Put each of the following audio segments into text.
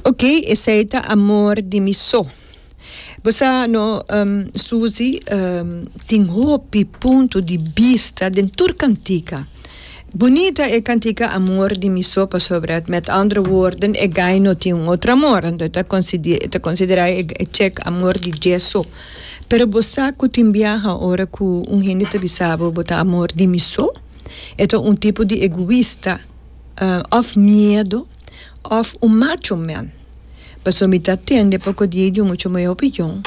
Ok, esei ta amor di mi so. Bo sa no, Susi tin hopi punto di bista den tur cantica. Bunita e cantica Amor di mi so pasobra met andere woorden e guy no tin un otro amor anto e ta ta considera e check amor di dje so. Pero bo sa cu tin biaha ora cu un hende ta bisa bo bo ta amor di mi so? E ta un tipo di egoista. òf miedu, òf un macho man. Pasobra mi ta tende poko di ei di un mucho mayor opinion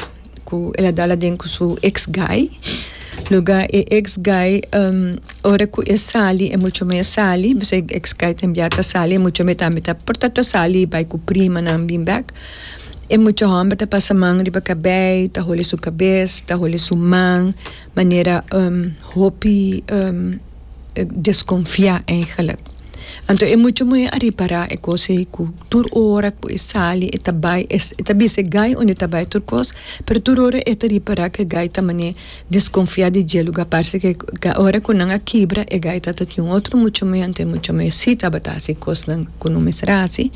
ku el a dal aden ku su eks guy. Loke e eks guy ora ku e sali e mucho mey a sali pasobra e eks guy tambe ya ta sali, e mucho mey tambe ta por ta sali bai ku primanan bin bèk. E mucho hòmber ta pasa man riba kabei, ta holi su kabes, ta holi su man, manera hopi deskonfiá èigelik. Anto e mucha muhé a ripará e kos ei ku tur ora ku e sali e ta bai e ta bisa e gai unda e ta bai tur kos, pero tur ora e ta ripará ku e gai ta manera deskonfiá di dje lugá. Parse ke ke ora ku nan a kibra e gai ta tin un otro mucha muhé, anto e mucha muhé si tabata hasi kosnan ku no mester hasi.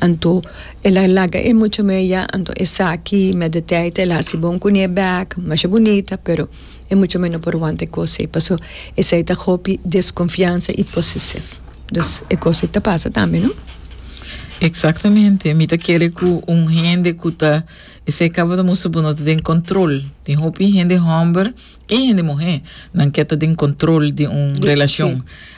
Anto el a laga e mucha muhé ya, anto esaki mèt di tèit el a hasi bon kuné bèk, masha bunita pero. E mucha mei no por wanta e cos ei paso esei ta hopi desconfiansa y posesief. Dus e cos ei ta pasa tambe no? Exactamente, mi ta kere cu un hende cu ta esei caba ta mustra bo no ta den control. Tin hopi hende homber y hende muhe nan ke ta den control di un relacion.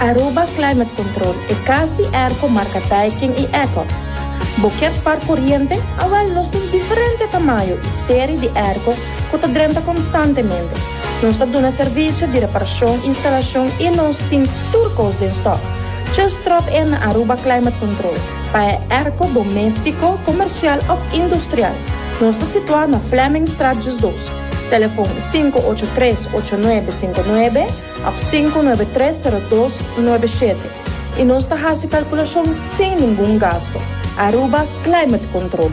Aruba Climate Control, e kas di Airco marka Daikin i Ecox. Bo kier spar koriente? Awèl, nos tin diferente tamayo i seri di airco ku ta drenta konstantemente. Nos ta duna servisio di reparashon, instalashon i nos tin tur kos den stòk. Just tròp in na Aruba Climate Control pa e airco doméstiko, komersial òf industrial. Nos ta situá na Flemingstraat Jus Dos. Telefon sinku ocho tres ocho nuebe sinku nuebe. Ap sinku nuebe tres sero dos nuebe shete i nos ta hasi kalkulashon sin ningun gasto. Aruba Climate Control.